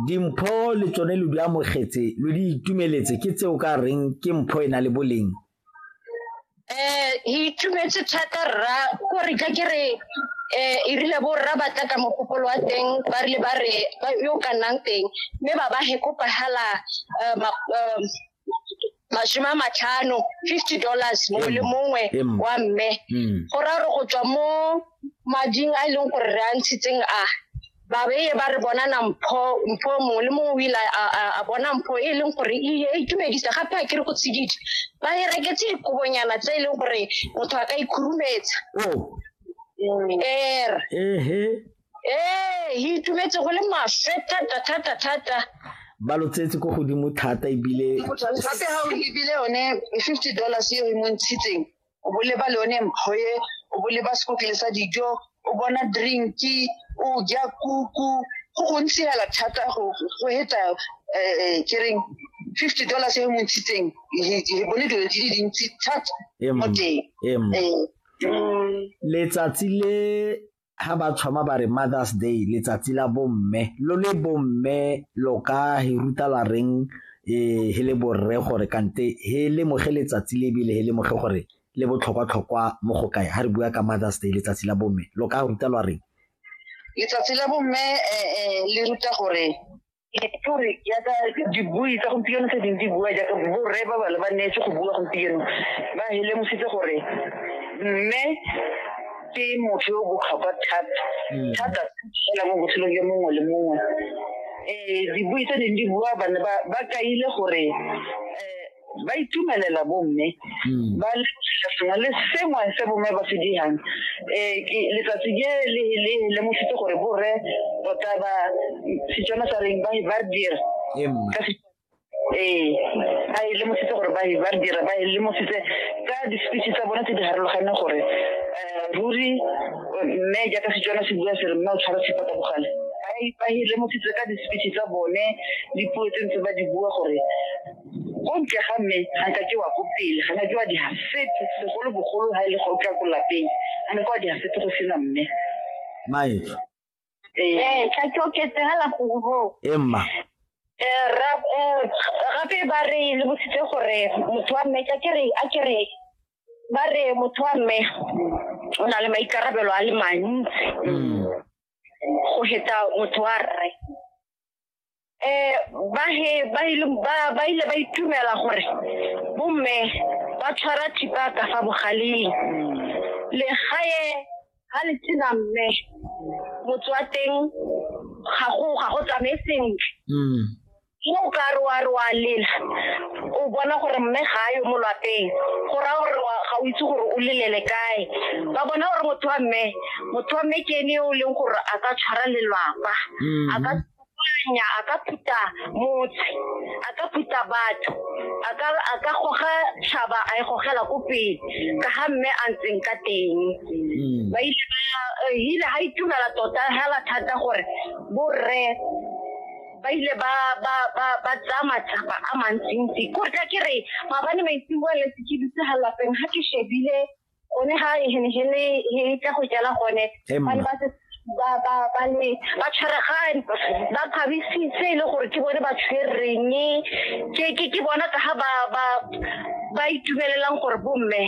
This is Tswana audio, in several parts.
Dimpho le tsone lo di amogetse, lo di itumeletse, ke tse o ka reng ke mpho e na le boleng? Eh, e itumetse thata rra, ko re ka ke re eh e rile bo rra ba tla ka mogopolo wa teng ba rile ba re ba yo ka nnang teng mme ba ba hekopahala eh, ma- eh, masome a matlhano fifty dollars mongwe le mongwe wa mme mm. go ra gore go tswa mo mading a e leng gore re a ntshitseng a ba beye ba re bona na mpho mpho mongwe le mongwe o ile a bona mpho e leng gore e, e itumedisa gape a kere go tshedidi ba e reketse dikobonyana tse e leng gore motho a ka ikhurumetsa oh. er ee le itumetse go le maswe thata thata thata ba lo tsetse ko godimo thata ebile gape ga o lebile yone fifty dollars eo e montshitseng o boleba le yone mpho e o boleba sekotlele sa dijo o bona drinki o ja kuku go gontsi hela thata go heta um eh, eh, kereng fifty dollars e montshitseng re bone dilo di le dintsi thata mo teng eh. mm. letsatsi le ha ba tshwama ba re Mother's Day letsatsi la bomme lo le bomme lo ka he ruta la reng eh he le borre gore kante he le moge letsatsi le bile he le moge gore le botlhokwa tlhokwa mo go kae ha re bua ka Mother's Day letsatsi la bomme lo ka ruta lwa reng letsatsi la bomme eh, eh, le ruta gore etori jaaka dibui tsa gompieno tse ding di bua jaaka borre ba bale ba neetse go bua gompieno ba helemositse gore mme ke motho yo botlhokwa thata hmm. thata fela mo botshelong yo mongwe le mongwe um dibui tse ding di bua bane ba kaile gore um ba itumelela bomme hmm. ba lebogela sengwe le sengwe se bomme ba se dirang um letsatsi ke le lemositse gore borre tota ba setswana sa reng ba ba dira ee ba e lemositse gore ba ba dira ba e lemositse ka di-speech tsa bone tse di harologaneng gore um ruri mme jaaka setswana se bua se re mme o tshwara sepata bogale ba e lemositse ka di-speech tsa bone dipuo tse ntse ba di bua gore ko ntle ga mme ga nka ke wa ko pele ga nka ke wa digasete segolo bogolo ga e le go tla ko lapeng ga nka wa digasete go sena mme mae ee tla ke oketsegela gore bo emma eh, ra- eh, gape ba re le bositse gore motho wa mme ka ke re a ke re ba re motho wa mme o na le maikarabelo a le mantsi go heta motho wa rre um ba ile ba itumela gore bomme ba tshwara thipa ka fa bogaleng legae ga le tsena mme motse wa teng ga go tsamaye sentle mo o ka re wa re wa lela o bona gore mme ga a yo mo lapeng go raya gore ga o itse gore o lelele kae ba bona gore motho wa mme motho wa mme ke ene o leng gore a ka tshwara lelwapa mm-hmm. a ka anya a ka phuta motse a ka phuta batho a ka goga tšhaba a e gogela ko pele ka ga mme a ntseng ka teng mm. ba ile ba eh, hile ga itumela tota hela thata gore borre ba ile ba ba ba ba tsaya matsapa a mantsintsi ko tla ke re maabane maitseboa le sekiditse ga lapeng ga ke shebile one ga e tla go jala gone bane ba se ba ba ba ne ba tshwaregane ba kgabisitse e le gore ke bone ba tshwereng ke ke ke bona ka ga ba ba ba itumelelang gore bomme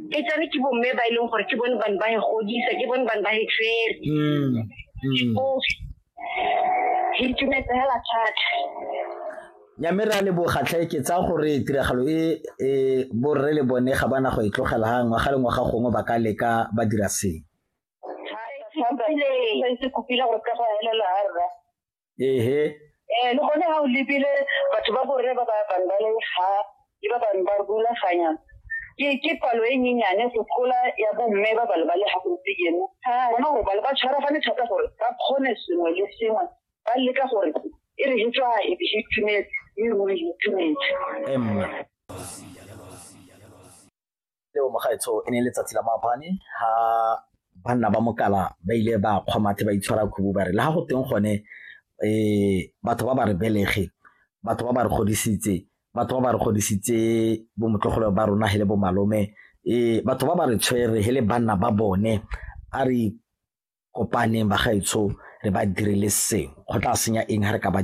e tsane ke bomme ba e leng gore ke bone bane ba e godisa ke bone bane ba e tshwere mm, mm. Ke itumetse hela thata. nya mme re a leboga tlhe ke tsaya gore tiragalo e e borre le bone ga bana go e tlogela ga ngwaga le ngwaga gongwe ba ka leka ba dira seng se kopile gore ka go elela ga rra ehe um le gone ga o lebile batho ba borre ba ba bangane ga ke ba bangwe ba rulaganya ke ke palo e nyenyane go tlola ya bomme ba bale ba le ga gompieno gona gore bale ba tshwaragane thata gore ba kgone sengwe le sengwe ba leka gore e re hetswa e be itumetse e ruri itumetse emma leo mogaetsho e ne letsatsi la maabane ha banna ba mokala ba ile ba kgwamathe ba itshwara khubu ba re le ga go teng gone um batho ba ba re belege batho ba ba re godisitse batho ba ba re godisitse bomotlogolo ba rona he le bomalome um batho ba ba re tshwere he le banna ba bone a re kopaneng bagaetsho re ba dirile sengwe go tla senya eng ga re ka ba